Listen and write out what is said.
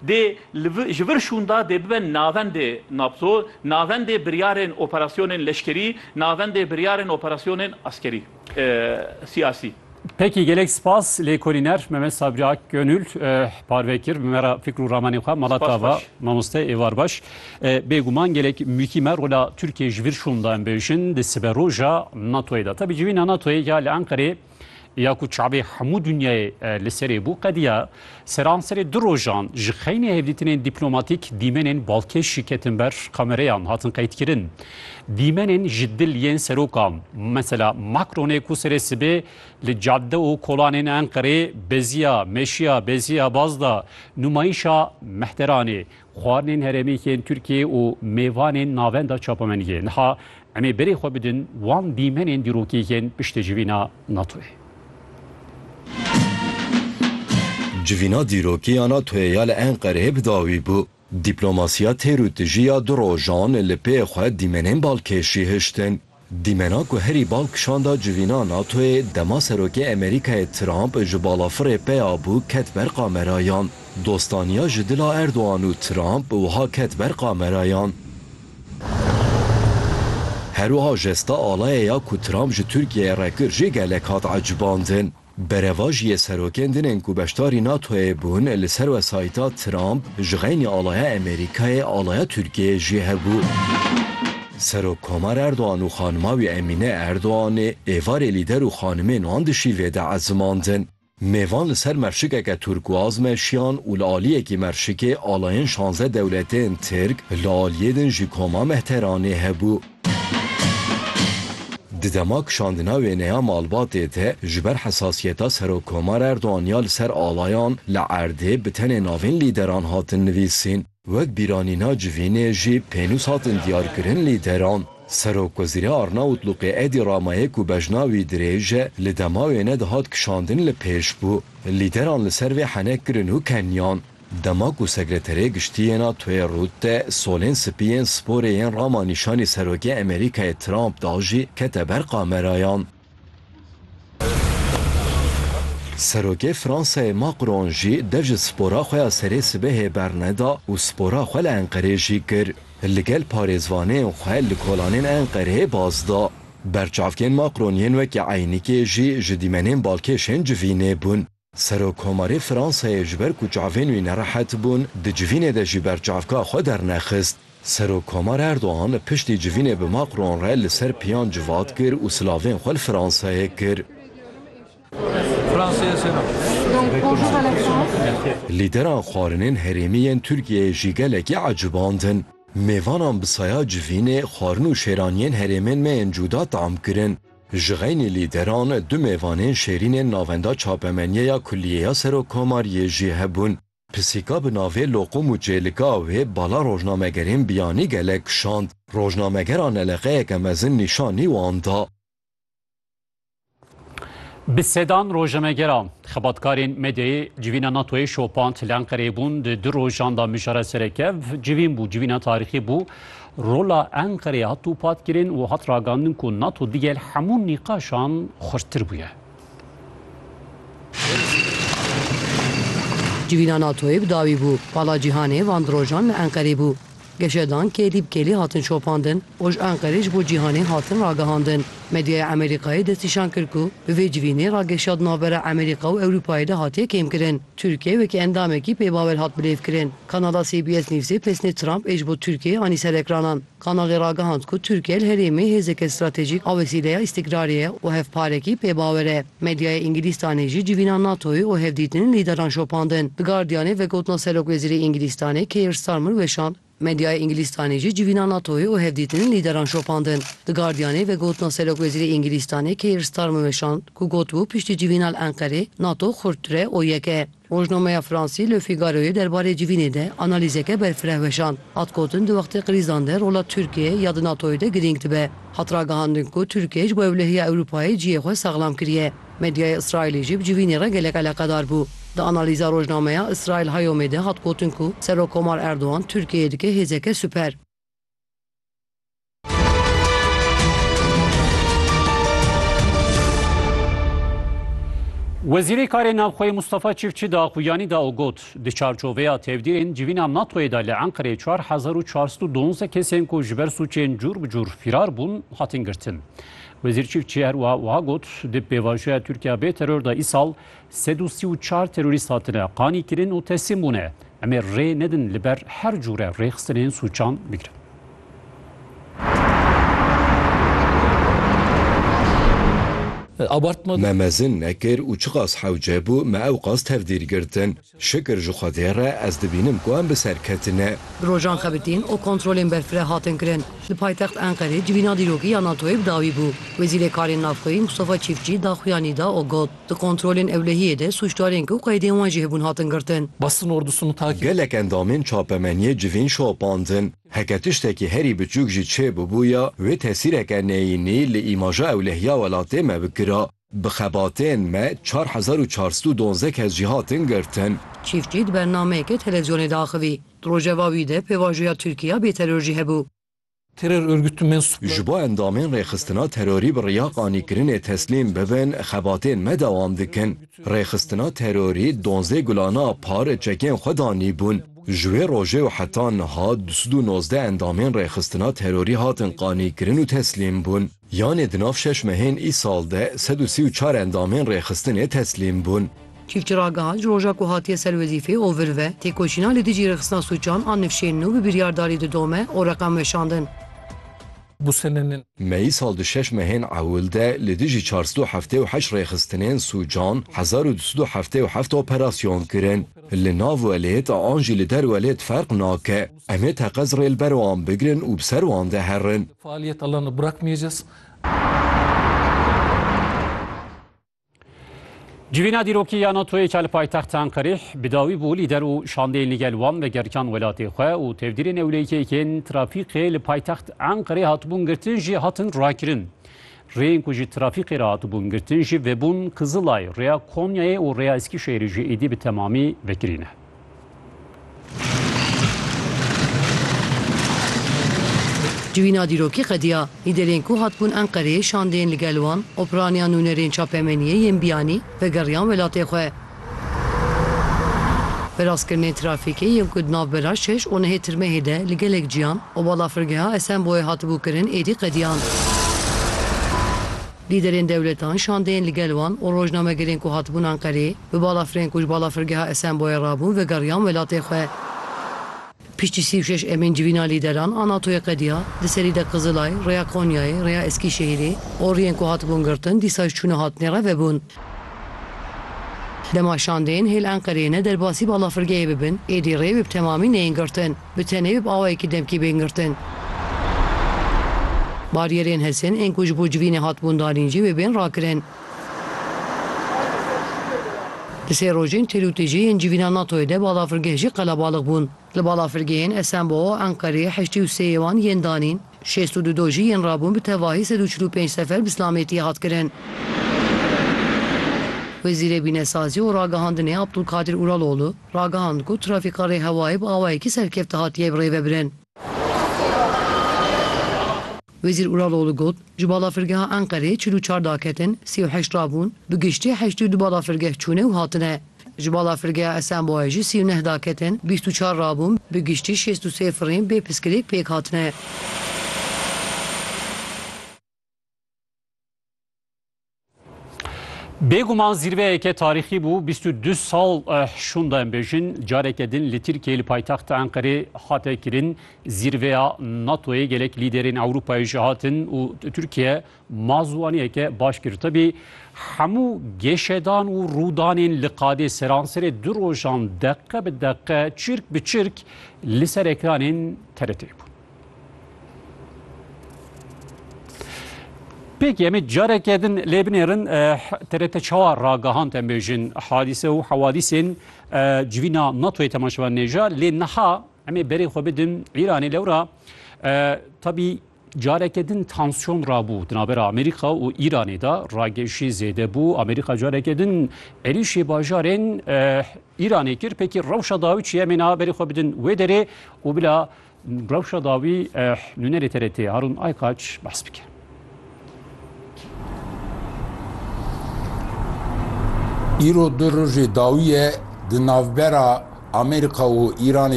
Dê li vi ji vir şûnda dê bibe navendê nabzo, navendê biryarên operasyonên leşkerî, navendê biryarên operasyonên askerî, siyasî. Peki gelek spas lêkolîner Memed Sabri Ak Gönül parve kir bi me re fikr û ramanên xwe mala te va mamoste êvar baş. Bêguman gelek mûkî me rola Tirkiyê ji vir şûnda em bêjin di siberoja NATO'yê de. Tabi civîna NATO'yê ya li Enqereyê ya ku çavê hemû dinyayê li serê bû qediya seranserê du rojan ji xeynê hevdîtinên dîplomatîk dîmenên balkêşî ketin ber kamereyan hatin qeydkirin. Dîmenên ji dil yên serokan mesela Macronê ku serê sibê li cadde û kolanên Enqerê beziya meşiya beziya baz da nûmayîşa mehteranê Xwarinên herêmî yên Tirkiyê û mêvanên navenda çapemeniyê niha em ê berê xwe bidin wan dîmenên dîrokî yên piştê civîna NATO'yê. Civîna dîrokî ya NATO'yê ya li Enqereyê bi dawî bû. Dîplomasiya têr û tijî ya du rojan li pê xwe dîmenên balkêşî hiştin. Dîmena ku herî bal kişanda civîna NATO'yê dema Serokê Amerîkayê Trump ji balafirê peya bû ket ber kamerayan. Dostaniya ji dila Erdogan û Trump wiha ket ber kamerayan. Herwiha jesta alaya ya ku Trump ji Tirkiyeyê re kir jê gelek hat ecibandin. Berevajiyê serokên din ên ku beşdarî NATO'yê bûn li ser wesayîta Trump ji xeynî alaya Amerîkayê alaya Tirkiyeyê jî hebû. Serok Komar Erdogan û xanima wî Emîne Erdoganê êvarê lîder û xanimên wan dişîvê de ezimandin. Mêvan li ser merşikeke turkuaz meşiyan û li aliyekî merşikê alayên şanze dewletên Tirk li aliyê din jî Koma Mehteranê hebû. Di dema kişandina wêne ya malbatê de ji ber hesasiyeta Serokkomar Erdogan ya li ser alayan li erdê bi tenê navên lîderan hatin nivîsîn. Wek bîranîna civînê jî pênûs hatin diyarkirin lîderan. Serokwezîrê Arnawutluqê Edî Ramayê ku bejna wî dirêj e li dema wêne de hat kişandin li pêş bû. Lîderan li ser vê henek kirin û keniyan. Dema ku Sekreterê Giştî yê NATO'yê Rutte solên spî yên sporê yên Rama nîşanî Serokê Amerîkayê Trump da jî kete ber kamerayan. Serokê Fransayê Macron jî dev ji spora xwe ya serê sibehê berneda û spora xwe li Enqerê jî kir. Li gel parêzvaneyên xwe li kolanên Enqereyê baz da. Berçavkên Macron yên wekî Eynikê jî ji dîmenên balkêşên civînê bûn. Serokkomarê Fransayê ji ber ku çavên wî nerehet bûn, di civînê de jî berçavka xwe dernexist. Serokkomar Erdogan piştî civînê bi Macron re li ser piyan civat kir û silavên xwe li Fransayê kir. Lîderan xwarinên herêmî yên Tirkiyeyê jî gelekî ecibandin. Mêvanan bi saya civînê, xwarin û şêraniyên herêmên me yên cuda tam kirin. Ji xeynî lîderan du mêvanên şêrînên navenda çapemeniyeya Kulîyeya Serokkomariyê jî hebûn. Pisîka bi navê Loqum û Çêlika wê bala rojnamegerên biyanî gelek kişand. Rojnamegera neleqeyeke mezin nîşanî wan da. Bi sedan rojnamegera, xebatkarên medyayê civîna NATO'yê şopand. Li Enqereyê bûn di du rojan de mijara serekev civîn bû. Civîna tarîxî bû. Rola Enqereyê hat dûpatkirin û hat ragandin ku NATO digel hemû nîqaşan xurttir bûye. Civîna NATO'yê bi dawî bû. Pala cîhanê van di rojan li Enqerê bû. Geşedan kêlî bi kêlî hatin şopandin û ji Enqerê ji bo cîhanê hatin ragihandin. Medyaya Amerîkayê destnîşan kir ku bi vê civînê rageşiya di navbera Amerîka û Ewrûpayê de hatiye kêmkirin. Tirkiye wekî endamekî pê Bawel hat bilêvkirin. Kanala CBS Newsê pesnê Trump ê ji bo Tirkiyeyê anî ser ekranan. Kanalê ragihand ku Tirkiye li herêmê hêzeke stratejîk a wesîleya îstîkrarê ye û hevparekî pê bawer e. Medyaya Îngilîstanê jî civîna NATO'yê û hevdîtinên lîderan şopandin. Di Guardianê vegotina serokwezîrê Îngilîstanê Keir Starmer weşand. Medyaya Îngilîstanê jî civîna NATOyê û hevdîtinên lîderan şopandin. The Guardianê vegotina serokwezîrê Îngilîstanê Keir Starmer weşand ku gotibû piştî civîna li Enqerê NATO xurttir e û yek e. Rojnameya Fransî Le Figaroyê derbarê civînê de analîzeke berfireh weşand. Hat gotin di wextê krîzan de rola Tirkiyeyê ya di NATOyê de girîng dibe. Hat ragihandin ku Tirkiyeyê ji bo ewlehiya Ewropayê cihê xwe saxlam kiriye. Medyaya Îsraîlê jî bi civînê re gelek eleqedar bû. Di analîza rojnameya Israel Hayomê de hat gotin ku Serokkomar Erdogan Tirkiyeyê dike hêzeke siper. Wezîrê Karê Navxweyê Mustafa Çiftçi di axuyanî de û got, Di çarçoveya tevdîrên civîna NATO'yê de li Enqereyê çar hezar û çar sed û duwazdeh kesên ku ji ber sûcên cûr bi cûr fîrar bûn hatin girtin. Wezîr Çîfçî her wiha wiha got, Di pêvajoya Tirkiya bê teror de îsal sed û sî û çar terorîst hatine qanîkirin û teslîm bûne. Em ê rê nedin li ber her cûre rêxistinên sûcan bigirin. Me mezin nekir û çiqas hewce bû me ew qas tevdîr girtin. Şikir ji Xwedê re ez dibînim ku em bi ser ketine. Bi rojan xebitîn û kontrolên berfireh hatin kirin. Li paytext Enqerê civîna dîrokî ya NATO'yê bi dawî bû. Wezîrê Karên Navxweyî Mustafa Çîfçî daxuya nîda û got, Di kontrolên ewlehiyê de sûcdarên ku qeydên wan jî hebûn hatin girtin. Gelek endamên çapemeniyê civîn şopandin. Heke tiştekî herî biçûk jî çê bibûya, wê tesîreke neyînî li îmaja ewlehiya welatê me bikira. Bi xebatên me çar hezar û çar sed û duwazdeh kes jî hatin girtin. Çîftçî di bernameyeke televîzyonê de axivî. Di rojeva wî de pêvajoya Tirkîya bê teror jî hebû. Teror örgütü mensupları. Ji bo endamên rêxistina terorî bi riya qanîkirinê teslîm bibin xebatên me dewam dikin. Rêxistina terorî duwazdeh gulana par çekên xwe danîbûn. Ji wê rojê û heta niha du sed û nozdeh endamên rêxistina terorî hatin qanîkirin û teslîm bûn. Yanê di nav şeş mehên îsal de sed û sî û çar endamên rêxistinê teslîm bûn. Çîfçi ragihand, ji roja ku hatiye ser wezîfê û vir ve, têkoşîna li dijî rêxistina sûcan a nifşên nû bi biryardarî didome û reqem weşandin. Me îsal di şeş mehên ewil de li dijî çar sed û heftê û heşt rêxistinên sûcan hezar û du sed û heftê û heft operasyon kirin. Li nav welêt an jî li der welêt ferq nake. Em ê teqez rê li ber wan bigirin û bi ser wan de herin. Civîna dîrokî ya NATO'yê ke li paytexta Enqerê bi dawî bû lîder û şandeyên li gel wan vegeriyan welatê xwe û tevdîrê newleyîkeyekên trafîqê li paytext Enqerê hatibûn girtin jî hatin rakirin. Rêyên ku ji trafîqê re hatibûn girtin jî vebûn Kizilay, Rêya Konyayê û Rêya Eskîşehîrê jî êdî bi temamî vekirî ne. Civîna dîrokî qediya lîderên ku hatibûn Enqereyê şandeyên li gel wan, operaniya nûnerên çapemeniyê yên biyanî vegeriyan welatê xwe. Veraskirinên trafîkê yên ku di navbera şeş û nehê tirmehê de li gelek ciyan û balafirgeha Esenboyê hatibû kirin êdî qediyan. Lîderên dewletan, şandeyên li gel wan û rojnamegerên ku hatibûn Enqereyê, bi balafirên ku ji balafirgeha Esenboyê re bûn vegeriyan welatê xwe. Piştî sî û şeş emîn civîna lîderan a NATO'yê qediya, di serî de Qizilay, Rêya Konyayê, Rêya Eskîşehîrê, oriyên ku hatibûn girtin dîsa ji çûna hatinê re vebûn. Dema şandeyên hêl Enqereyê ne derbasî balafirgehê bibin, êdî rê wê bi temamî neyên girtin. Bi tenê û bi awayekî demkî bên girtin. Baryerên hesên ên ku ji bo civînê hatibûn danîn jî wê bên rakirin. Di sê rojên têl û têjê yên civîna NATO'yê de balafirgeh jî qelebalix bûn. Li balafirgehên Esenbo'o, Enqerê, Heştî û Sêyê wan yên danîn. Şêst û du dojî yên rabûn bi tevahî sed û çil û pênc sefer bi silamêtî hat kirin. Wezîrê Bînesazî û Ragihandinê Abdulkadir Uraloğlu ragihand ku trafîka rêhewayê bi awayekî serkefte hatiye birêvebirin. Wezîr Uraloğlu got, Ji balafirgeha Enqereyê çil û çar daketin, sî û heşt rabûn, bi giştî heştî û du balafirgeh çûne û hatine. Ji balafirgeha Esenboyê jî sî û neh daketin, bîst û çar rabûn, bi giştî şêst û sê firîn bê piskilîk pêk hatine. Bêguman zîrveyeke tarîxî bû, bîst û du sal şûnda em bêjin careke din li Tirkiyeyê li paytexta Enqerê hate kirin, zîrveya NATOyê gelek lîderên Ewropayê jî hatin û Tirkiye Ma ziwaniyeke baş girtibî, hemû gêşedan û rûdanên li qadê seransirê du rojan deqe bi deqe, çirk bi çirk li ser ekranên TRT'ê bûn. Pêkî em ê careke din lê binêrin TRT çawa ragihand em bêjin hadîse û hewadîsên civîna NATOyê temaşevan nêja lê niha em ê berê xwe bidin Îranê lewra tabî Careke din tansyon rabû di navbera Amerîka û Îranê de ragejî zêde bû. Amerîka careke din êrîşê bajarên Îranê kir pêkî rewşa dawî çi ye mêna berê xwe bidin wê derê û bila rewşa dawî nûnerê TRT Harûn Aykaç behs bike. Îro du rojê dawî ye di navbera Amerîka û Îranê.